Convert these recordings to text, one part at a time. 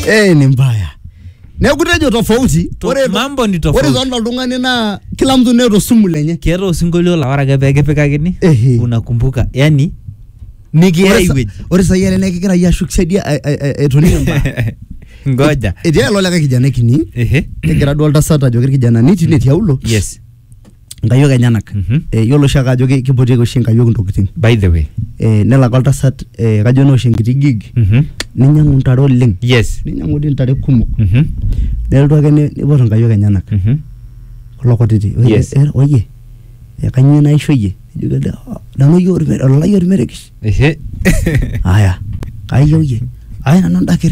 eh, ni mbaya neeku tejo tofauti To- ore to- mambo ni tofauti. ore tonda oltung'ani naa kila mtu neeta osumu lenye keeta osinkolio la ore ake pee kipikakini Ehe. unakumbuka yani nikiya Ore sa- iwueji ore sai ele naa kegira yie ashuk siadi a- a- a- etonie mbaya ngoja etii ilo likae kijana kini Ehe. negira duo oltasat ajoki irkijanani tine tiaulo yes nkayiok enyenak Mhm. Eh, yiolo oshiake ajo ki- kipotieki oshi nkayiok ntokitin by the way Eh, nelak oltasat eh, kajo naa oshi enkiti gig Mhm. ninyiang'u ntare oleng yes ninyiang'u dii ntare kumok Mhm. nelotu ake ni- nipot nkayiok enyenak Mhm. kulo kutiti Oye, Yes. eh, oye eh, kanyio naisho iyie Ejoki ele, "Ah, nanu oyie orme- ololai ormerekesh Ehe. aya kayieu iyie aya nanu ndakir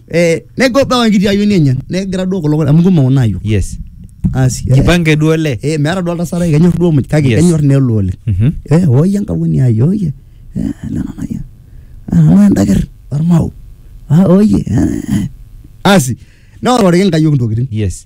Eh, nego bawa enkiti ayioni enye negira duo kulo amu kumok nayo yes asi eh, jipange duo le eh, meeta duo oltasat ai kenyor duo muj kake Yes. kenyor nelo oleng Mhm. eh, oye enkauni ai oye eh, lena naye ana endaker ormao ah, oye eh, eh. asi neororiki nkayiok intokitin yes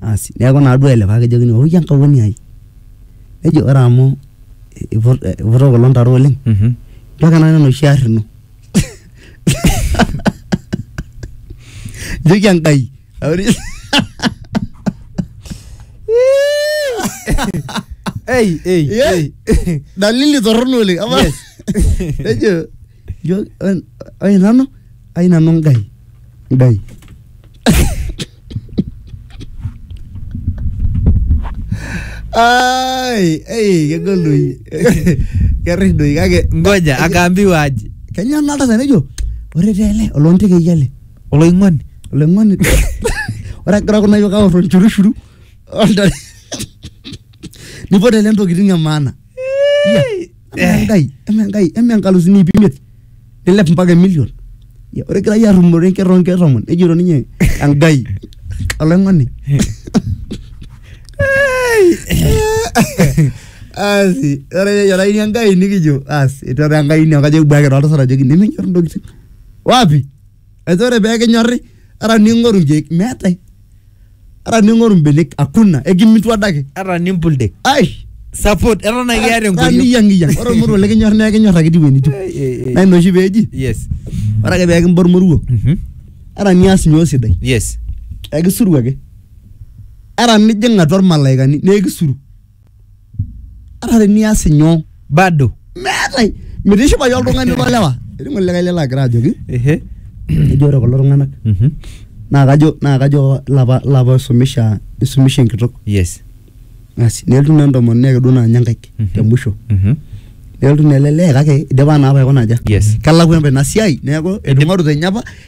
asi neaku naduo ele paa kejokini ooki enkaoni ai nejo ore amu eiputa kulo ntare oleng Mhm. nchooki nanu enoshi arri ino njoki enkai auri Ei, ei, Yeah. ei. dalili torrono oleng ama Yes. nejo Yo, eh, ai nanu, ai nanu ngai. Ngai. Ai, ei, kegol doi. Keris doi kake. ngoja akaambiwa aje Kenya nalta sana jo. Ore tele, olonte ke yale. oloing'oni Olengoni. Ora kira kuna yoka oro nchurushuru. Olta. Nipote le ntokitin e maana. Iya, amaa enkai amaa enkai amaa enkalusuni iip imiet nilep mpaka emilion Ya, ore egirai arrumore enkerr oonkerr tomon nejito ninye enkai olaing'oni asi ore eyiolaini enkai nikijo asi etu ore enkai ine kajo kibuaki toltasat ajoki nemenyor intokitin wapi ajo ore pee kinyorri ara ning'oru nkeek meetae ata ning'oru mbenek akuna ekimitu adake ata nimpul dek ai support eton ake iata enkoriong niyangiyan ore ormoruo likinyor naa ekinyor ake tiwe nitiu Eh, eh, eh. naa ina oshi peeji yes ore ake peekimba ormoruo Mhm. ata nias nyoo sidai yes ekisuru ake ata nijing atua irmalaikani naa ekisuru ata tenias inyoo bado meetae mitishipayu oltung'ani lolewa etii ng'ole likae lelo agira ajoki ehe ejo ore kulo tung'anak Mhm. naa kajo naa kajo lapa lapa oisumisha isumisha enkitok yes asi nelotu naa entomononi ake duo naa ninye nkaik Mhm. te musho Mhm. nelotu naa ele lee kake idipa naa apa aikuna aja Yes. kelakua apa ina siai neeku etung'orutua enye apa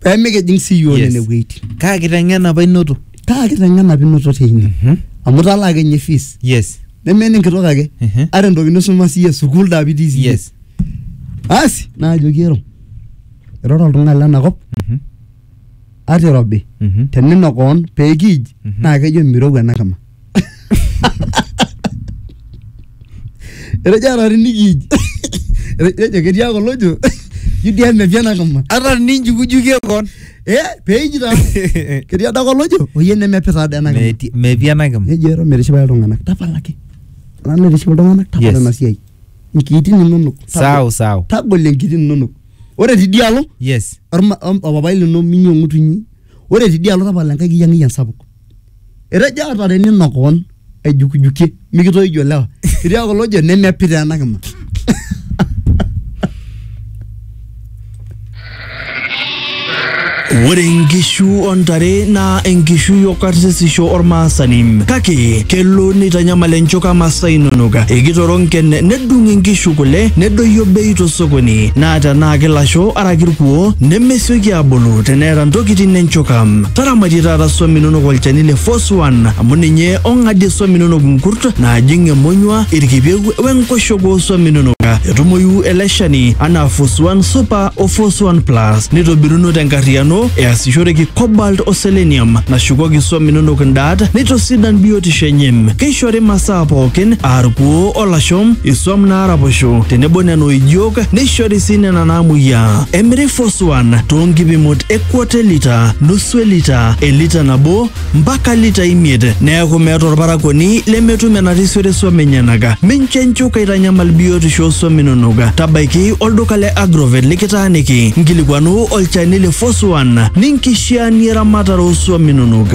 pemikijing sii yiok Yes. nene wueitin kaa kiteng'ena apa inoto kaa kiteng'ena pinoto teine Mhm. amu italaa kenye fees yes neme enenkitok ake Mhm. ata entoki nisuma siiyie sukuul daa pitii siiyie yes asi naajoki ero iroro oltung'ani lenakop Mhm. ata irobi Mhm. tenino koon peekiij Mhm. naa kejo mirowua ena kima Erejare niki. Erejo ketii ake olojo. Judia mepi ena kama. Ata ninjukujukie kon. Eh, peji taa. Ketii adake olojo. Oyie nemepi taa ena kama. Meti- Mepi ena kima. Nejo ero metishipa iltung'anak. Tapalaki. Ena naitiship iltung'anak tapala Yes. ena siai. Nkiitin inonok. Tagol- Sawa sawa. Tagol enkiitin inonok. Ore tidialo Yes. orma- om- opapai lino minyi ong'utunyi. Ore tidialo tapala enkai kiyang'iyang sapuk. etejo ata tenino koon aijukijukie mikitoijo lewa etii kulo ojo nemepita ena kima Ore inkishu ontare naa enkishui o karsisisho ormaasani kake kelo neitanyamal enchoka masaa inonok ekitoronken nedung inkishu kule nedoyio bei tosokoni naa tenaa kilasho araki irkuo neme sioki abulu teneeta ntokitin enchuka. Taramatie taata swam inonok olchani le Foswan amu ninye ong'adie swam inonok nkurt naajing emonyua, irkipieu we nkoshoke oo swam inonok. Etumoyu ele shani anaa Foswan Super o Foswan Plus neitobiruno tenkarriyiano easishoreki cobalt o selenium nashukoki swam inonok ndaat neitosidan biotisho enye. Keishori masaa pookin aa irkuoo o lasho, iswam naaraposho tenebo nena oijiok neishori sii nena naamuoyiaa. Emiri Foswan too nkipimot e kwota elita, nusu elita, elita nabo mpaka lita imiet neaku meeta olparakuoni lemetum enarisiore swam enyenaka. Mincho enchuka eitanyamal biotisho oo swam inonok. Tabaiki olduka le Agrovet likitaaniki, nkilikuanu olchani le Foswan ninkishiaanie eramatare oo swam inonok.